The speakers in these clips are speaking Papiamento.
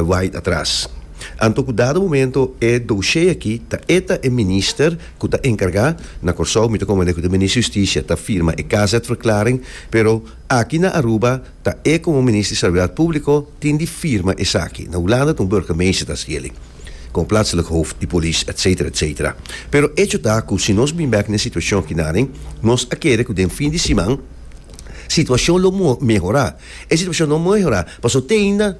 Wait atras. Anto ku dado momento e doshé aki ta e ta e minister ku ta enkargá na Kòrsou, mi ta komand'é ku ta e minister di Hustisia ta firma e kazetverklaring, pero aki na Aruba ta e komo minister di Seguridad Públiko tin di firma esaki. Na Hulanda ta un burgemeester ta hasi el'i, komo platselijk hoof di polis, etsetera, etsetera. Pero echo ta ku si nos bin bèk na e situashon aki naden, nos a kere ku den fin di siman situashon lo mehorá. E situashon no mehorá pasobra te ainda.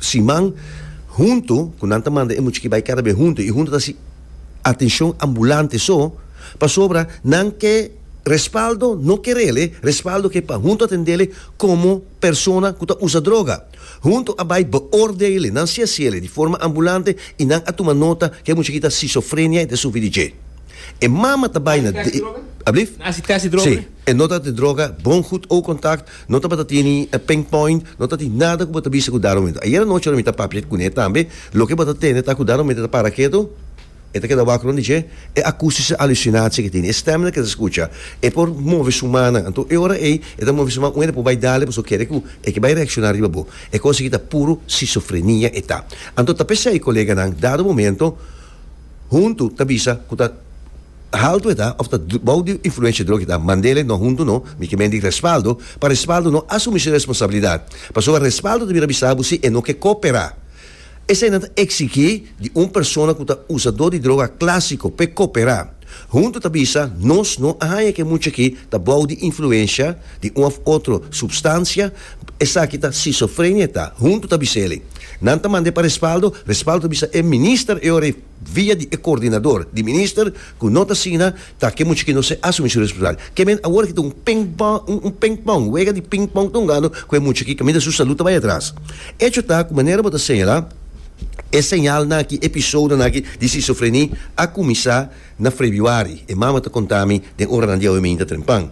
siman huntu ku nan ta manda e muchachi bai kada bes huntu i huntu ta hasi atenshon ambulante so pasobra nan ke respaldo no kerele respaldo ke pa huntu a tendele komo persona ku ta usa droga huntu a bai beoordele nan si hasiele di forma ambulante i nan a tuma nota ke e muchachi ta sisofrenia i ta sufri di dje e mama ta bai na di abli si e nota di droga bon gud oog kontakt. No tabata tene e pain point, no ta tin nada ku bo ta bisa ku Darwin mester. Ayera nochi ora mi ta papia kuné tambe, loke bo ta tende ta ku Darwin mester ta para ketu, e ta keda wak rònt di dje, e akústische Halluzinatie ke tin, e stèmnan ke ta skucha, e por move su mannan. Anto e ora ei e ta move su man un e depò bai dale pasobra kere ku e ke bai reakshoná riba bo. E kos aki ta puru sisofrenia e ta. Anto ta p'esei koleganan dado momento huntu ta bisa ku ta. Haltu e ta, of ta bou di influensha drogi ta, Mandela i no huntu no, mi ke mendi respaldo, pa respaldo no asumi su responsabilidat. Pasobra respaldo ta bira bisa bo si e no ke koperá. Eseinan ta eksigí di un persona ku ta usadó di droga klásiko p'e koperá. Huntu ta bisa, Nos no a haña ke mucha aki ta bou di influensha di un of otro supstansia, esaki ta sisofrenia e ta, huntu ta bis'e eli. Nan ta mand'e pa respaldo, respaldo ta bisa e minister e ora i. via di e coordinador di minister cu no ta asina ta ke muchacho no ser asumi su responsabilidad. Ke men awor ke ta un ping-pong, un ping-pong, un wega di ping-pong ta un gano cu e muchachi caminda su salud ta bay atras. Hecho ta cu manera bo ta señala e señalnan aki, episodonan aki di schizofreni a cuminsa na Frebiuari, e mama ta contami den oranan di awe minta trempan.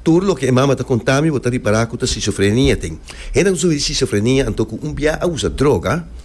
Tur loke e mama ta contami bo ta ripara cu ta schizofrenia. Ten hendenan cu sufri di schizofrenia anto cu un bia a usa droga.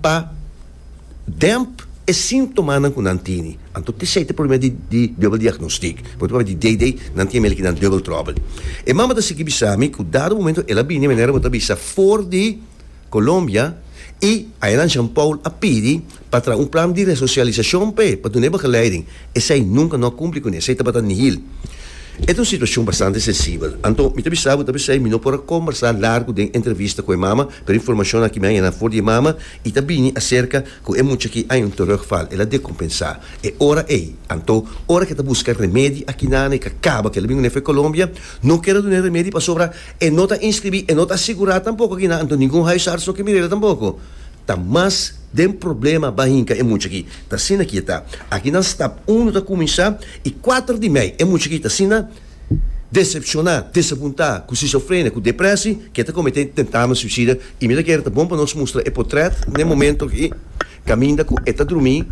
Pa demp e sintomanan ku nan tini, anto disei ta e problema di di dubel diagnostik. Por e problema di DD nan tin mele ki nan dubel tròbel. E mama ta sigui bisa mi ku dado momento el a bini manera bo ta bisa for di Colombia i Ayala Jean Paul a pidi pa traha un plan di resosialisashon pa e, pa duna e begeleiding. Esei nunka no a kumpli kune, esei tabata nihil. E ta un situashon bastante sensibel. Anto mi ta bisa bo, mi ta bisa ei mi no por a kombersá largu den entrevista ku e mama Pero e informashon aki mi a yena for di e mama i ta bini aserka ku e mucha aki año terug fal el a dekompensá e ora ei. Anto, ora ke ta buska remedi aki nan e ka kaba kel bingu nefe Kolombia, no keda duna e remedi pasobra e no ta inskribí, e no ta asigurá tampoko aki nan, anto ningun huisarts no ke mira el tampoko. Ta mas den problema ba hinka e mucha aki. Ta asina ki e ta. Aki nan stap uno ta kuminsá i kuater di mei e mucha aki ta asina. desepshoná, desabuntá, ku sisofrenia, ku deprèsi, ke ta kometé tentamen suisida, i mira kere ta bon pa nos mustra e potrèt n'e momentu aki kaminda ku e ta drumí,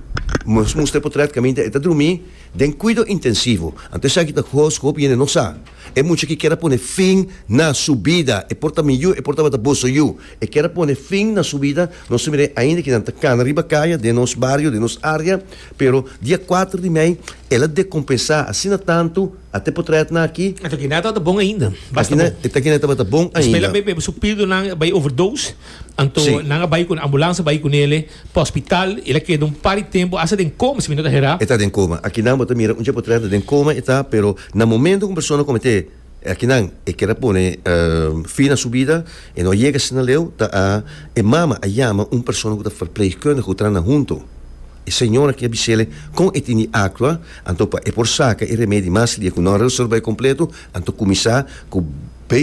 nos mustra e potrèt kaminda e ta drumí den kuido intensivo. Anto esaki ta kos ku hopi hende no sa. E mucha aki kier a pone fin na su bida, e por ta mi yu, e por tabata boso yu, e kier a pone fin na su bida, nos ta mir'é ainda ke nan ta kana riba kaya den nos bario, den nos área, pero dia kuater di mei, El a dekompensá asina tantu ate por traé atna aki. E ta kina e tabata bon ainda. Basta bon. E ta kina e tabata bon ainda. Espe la bebe su pildonan a bai overdose, anto nan a bai ku ambulansa bai ku nele pa hospital. El a keda un par di tempu hasta den koma, si mi no ta herá. E ta den koma. Aki nan bo ta mira un dje por traé atna den koma e ta, pero na momento ku un persona kometé. E akinan e keda pone fin na su bida, e no a yega asina leu, ta a e mama a yama un persona ku ta verpleegkundige ku traha nan huntu. E señor aki a bis'el kon e tin di aktua, anto pa e por saka e remedi mas lia ku no a reserba e kompletu, anto kuminsá ku.